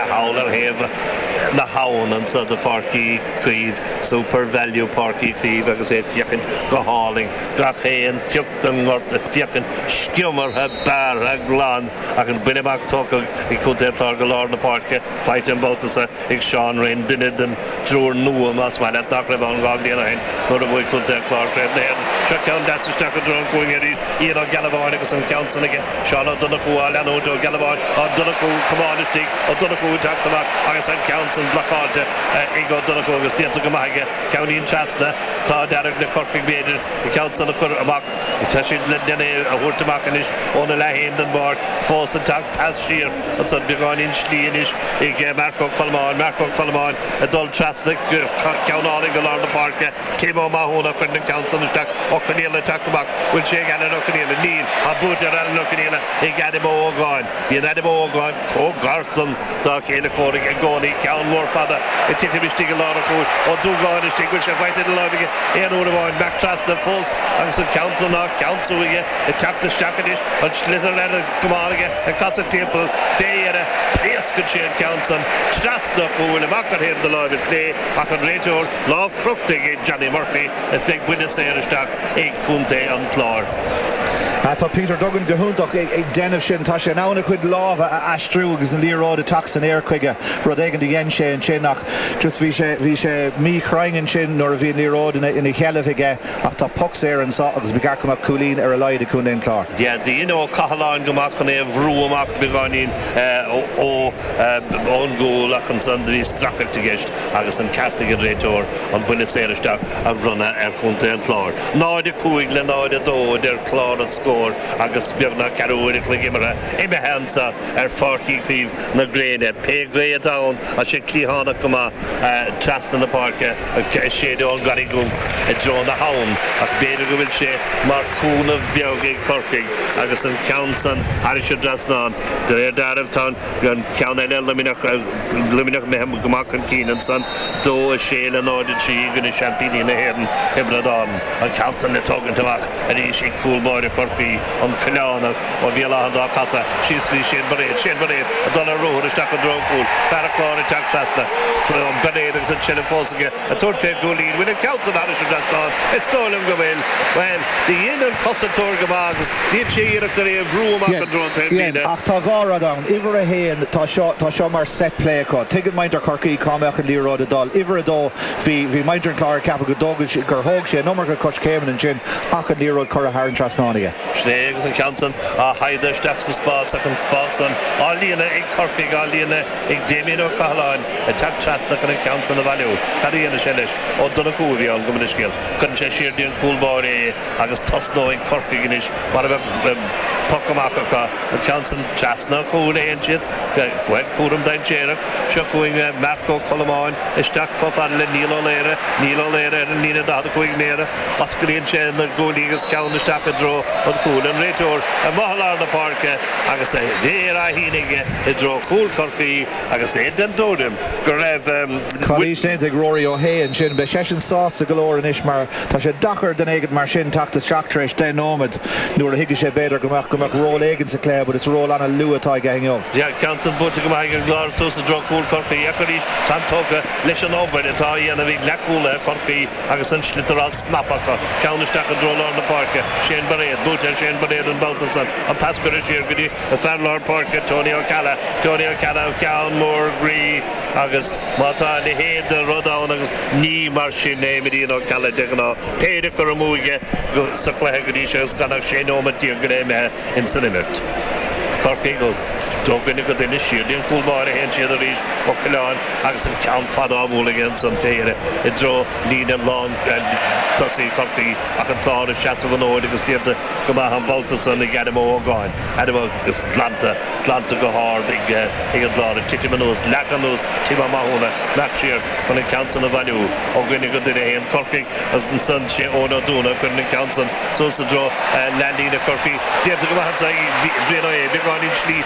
thall ar thaobh na habhann anso de Pháirc Uí Chaoimh, SuperValu Páirc Uí Chaoimh agus é féachaint go hálainn, gach aon phioc den ngort ag féachaint sciomartha, bearrtha, glan, agus buille amach tugtha ag Contae an Chláir go lár na páirce faighte an babhta so ag Seán Rynne, duine den. Triúr nua más maith leat nach raibh ann dhá bhliain ó shin nuair a bhuaigh contae an Chláir Craobh na hÉireann. Seo ceann deas isteach i dtreo an chúinne arís, Ian Ó Gealbháin agus an ceann san aige, Seán Ó Donnchú á leanúint, Ó Gealbháin, Ó Donnchú, Comáin istigh, Ó Donnchú ag teacht amach agus an ceann san blocáilte ag Ó Donnchú agus déanta go maith aige, ceannín trasna, tá ag éirí le Corcaigh b'fhéidir an ceann san a chur amach, tá siad len é a thabhairt amach anois óna leath féin den bpáirc, fós ag teacht, pas siar. Ansan beagáinín slí anois ag Marc Ó Colmáin. Marc Ó Colmáin ag dul trasna ceann álainn go lár na páirce. Tim Ó Mathúna a chur an ceann san isteach. Ó Conaola ag teacht amach. Bhfuil sé ag Alan Ó Conaola? Níl. Tá buaite ar Alan Ó Conaola ag Adam Ó Ógáin. Bíonn Adam Ó Ógáin chomh gar san dá chéile comhraic i gcónaí. Ceann mór fada ag titim istigh i lár an chúil. Ó Dúgáin istigh. Bhfuil sé faighte ina láimh aige aon uair amháin. Marc trasna fós agus an ceann san á cheansú aige. Ag teacht isteach anois. An sliotar ar an gcamán aige. Ag casadh timpeall fé dheireadh pléascann sé an ceann san trasna an chúil amach ar thaobh na láimhe clé ach an réiteoir lámh crochta ag Johnny Murphy is beidh buille saor isteach ag Contae an Chláir. Tá Peter Duggan go hiontach ag déanamh sin. Tá sé in ann a chuid lámha a aistriú agus an liathróid ag teacht san aer chuige. Rud éigin a dhein sé ansin ach just bhí sé bhí sé míchruinn ansin nuair a bhí an liathróid ina sheilbh aige. Ach tá poc saor anseo agus beidh deis mhaith cúilín ar a laghad ag Contae an Chláir. Dhein Ó Cathaláin go maith chun é a bhrú amach beagáinín ón gcúl ach ansan do bhí stracadh i gceist agus an ceart ag an réiteoir an buille saor isteach a bhronnadh ar Chontae an Chláir. 0, 5 le 0, 2 a deir clár na scór agus beagnach ceathrú uair a chloig imeartha imithe anseo ar Pháirc Uí Chaoimh na Gréine. Pé gaoth atá ann tá sé cliathánach go maith trasna na páirce. Ag séideadh ón gCarraig Dhubh i dtreo na habhann ach b'fhéidir go bhfuil sé mar chúnamh beag ag Corcaigh agus an ceann san thairis an dtrasnán. De réir deáraimh tá an ceann eile, Luimneach, Luimneach imithe go maith chun cinn ansan, 2-6 le 0-3 i gcoinne seaimpíní na hÉireann, Tiobraid Árann. An ceann san le tógaint amach arís ag cúl báire Chorcaí, an Coileánach. Ó Mhíchíl, álainn dá casadh síos go dtí Shane Bairéad. Shane Bairéad ag dul ar ruathar isteach i dtreo an chúil. Fear an Chláir ag teacht trasna. An Bairéad agus an sliotar fós aige. Ag tabhairt fé chúilín. Bhfuil an ceann san thairis an trasnán? Is dóigh liom go bhfuil. Bhuel, do dhein an cosantóir go maith agus dhein sé iarracht ar é a bhrú amach i dtreo an taobhlíne. Ach tá dhá rud ann. Uimhir a haon, tá seo, tá seo mar set play acu. Tuigeann muintir Chorcaí cá mbeadh an liathróid ag dul. Uimhir a dó, bhí, bhí muintir an Chláir ag ceapadh go dtógfaidh, gur thóg sé an iomarca coiscéimeanna ansin ach an liathróid curtha thar an trasnán aige. Slé agus an ceann san á shaighdeadh isteach sa spás ach an spás san á líonadh ag Corcaigh, á líonadh ag Damien Ó Cathaláin ag teacht trasna chun an ceann san a bhailiú. Cad a dhéanfaidh sé leis? Ó Donnchú a bhí ann gabh mo leithscéal. Cuireann sé siar dtí an cúl báire é agus tosnóidh Corcaigh anois mar a bheadh poc amach acu. An ceann san trasna an chúil a théann siad. Bhuel, cúram dainséarach. Seo chugainn Marc Ó Colmáin isteach chomh fada le Niall Ó Laoire. Niall Ó Laoire ar an líne 45 méadar. Osclaíonn sé na guaillí agus ceann isteach i dtreo an chúil. An réiteoir amuigh i lár na páirce agus a mhéar á shíneadh aige i dtreo chúl Chorcaí agus é den tuairim go raibh calaois déanta ag Rory Ó hAodha ansin. Beidh seisean sásta go leor anois mar tá sé deacair d'éinne mar sin teacht isteach tar éis deich nóiméad nuair a thuigfeadh sé, b'fhéidir, go mbeadh go mbeadh ról éigin sa cluiche but is ról an-luath atá aige inniu. Ceann san buailte go maith ag an gClár suas i dtreo chúl Chorcaí ach arís táim tógtha leis an obair atá á dhéanamh ag leathchúlaithe Chorcaí. Agus an sliotar á snapadh acu, ceann isteach i dtreo lár na páirce, Shane Bairéad. Buaite ar Shane Bairéad an babhta san. An pas curtha siar go dtí fear lár páirce, Tony Ó Ceallaigh. Tony Ó Ceallaigh, an ceann mór groí agus má tá a leithéid de rud ann agus ní mar sin a imríonn Ó Ceallaigh de ghnáth. Péire curtha amú aige sa chluiche go dtí seo agus gan ach sé nóiméad déag go leith imithe. ins an imirt. Corcaigh ó dhuine go duine siar dtí an cúl báire théann siad arís Ó Coileáin agus an ceann fada á bhualadh aige ins an spéir i dtreo líne lán tosaigh Chorcaí ach an Clár ag seasamh an fhóid agus déanta go maith an babhta san ag Adam Ó hÓgáin. Adam agus glanta, glanta go hard ag an gClár ag titim anuas, leagtha anuas Tim Ó Mathúna, ag imeacht siar chun an ceann san a bhailiú. Ó dhuine go duine a théann Corcaigh agus ansan sé Eoin Ó Dúna a chuireann an ceann san suas i dtreo leathlíne Chorcaí. Déanta go maith ansan ag Brian Ó hAodha, beagáinín slí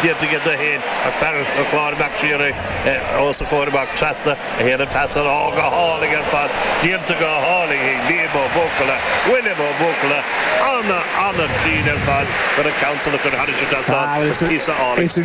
déanta aige dó féin ach fear an Chláir ag imeacht siar os a chomhair amach trasna a théann an pas san, ó go hálainn ar fad. Déanta go hálainn ag Liam Ó Buachalla. William Ó Buachalla ana ana cruinn ar fad chun an ceann san a chur thairis an trasnán. Is píosa álainn scil.